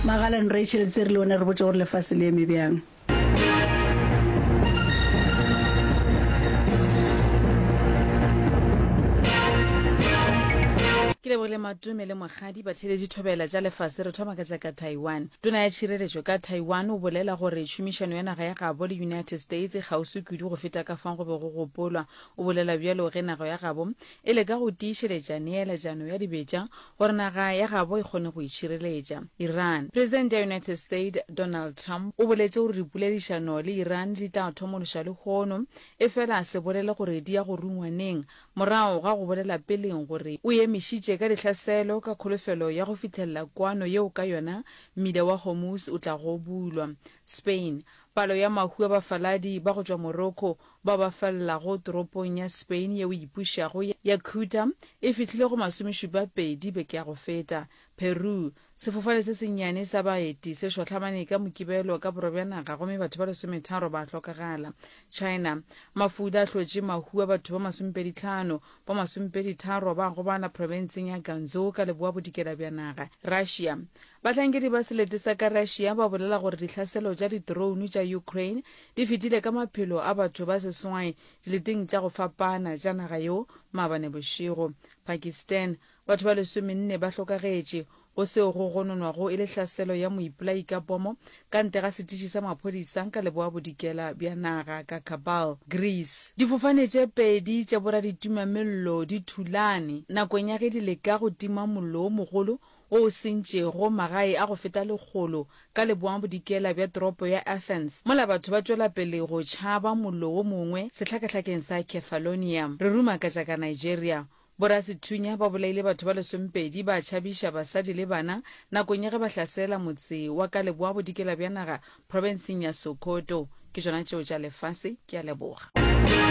Magalan Rachel tse re le one re botse gore lefase le eme bjang. Ke lebogile Matume le Mogadi ba tlhele dithobela tša lefase. Re thoma ka tša ka Taiwan. Tona ya Tšhireletšo ka Taiwan o bolela gore tšhomišano ya naga ya gabo le United States e kgauswi kudu go feta ka fao go be go gopolwa. O bolela bjalo ge nago ya gabo e le ka go tiišeletša neeletšano ya dibetša gore naga ya gabo e kgone go itšhireletša. Iran. Presidente ya United States Donald Trump o boletše gore dipoledišano le Iran di tla thomološwa lehono, efela a se bolele gore di ya go rungwa neng, morago ga go bolela peleng gore o emišitše ka dihlaselo ka kholofelo ya go fihlelela kwano yeo ka yona mmila wa Hormuz o tlago bulwa. Spain. Palo ya mahu a bafaladi ba go tšwa Morocco bao ba felelago toropong ya Spain yeo e ipušago ya Ceuta e fihlile go masomešupapedi beke ya go feta. Peru, Sefofane se sennyane sa baeti se šohlamane ka Mokibelo ka borwa bja naga gomme batho ba lesometharo ba hlokagala. China, Mafuda a hlotše mahu a batho ba masomepedi tlhano, ba masomepedi tharo ba gobala profenseng ya Ganzhou ka leboabodikela bja naga. Russia, Bahlankedi ba selete sa ka Russia ba bolela gore dihlaselo tša ditrounu tša Ukraine di fetile ka maphelo a batho ba seswai dileteng tša go fapana tša naga yeo maabane bošego. Pakistan, Batho ba lesomenne ba hlokagetše, go seo go gononwago e le hlaselo ya moipolai ka pomo ka ntle ga setiši sa maphodisa ka leboabodikela bja naga ka Kabul, Greece. Difofane tše pedi tša boraditumammello di thulane nakong ya ge di leka go tima mollo wo mogolo wo o sentšego magae a go feta lekgolo ka leboangabodikela bja toropo ya Athens, mola batho ba tšwela pele go tšhaba mollo wo mongwe sehlakahlakeng sa Kefalonia, re ruma ka tša ka Nigeria. Borasethunya ba bolaile batho ba lesomepedi ba tšhabiša basadi le bana nakong ya ge ba hlasela motse wa ka leboabodikela bja naga profenseng ya Sokoto. Ke tšona tšeo tša lefase. Ke a leboga.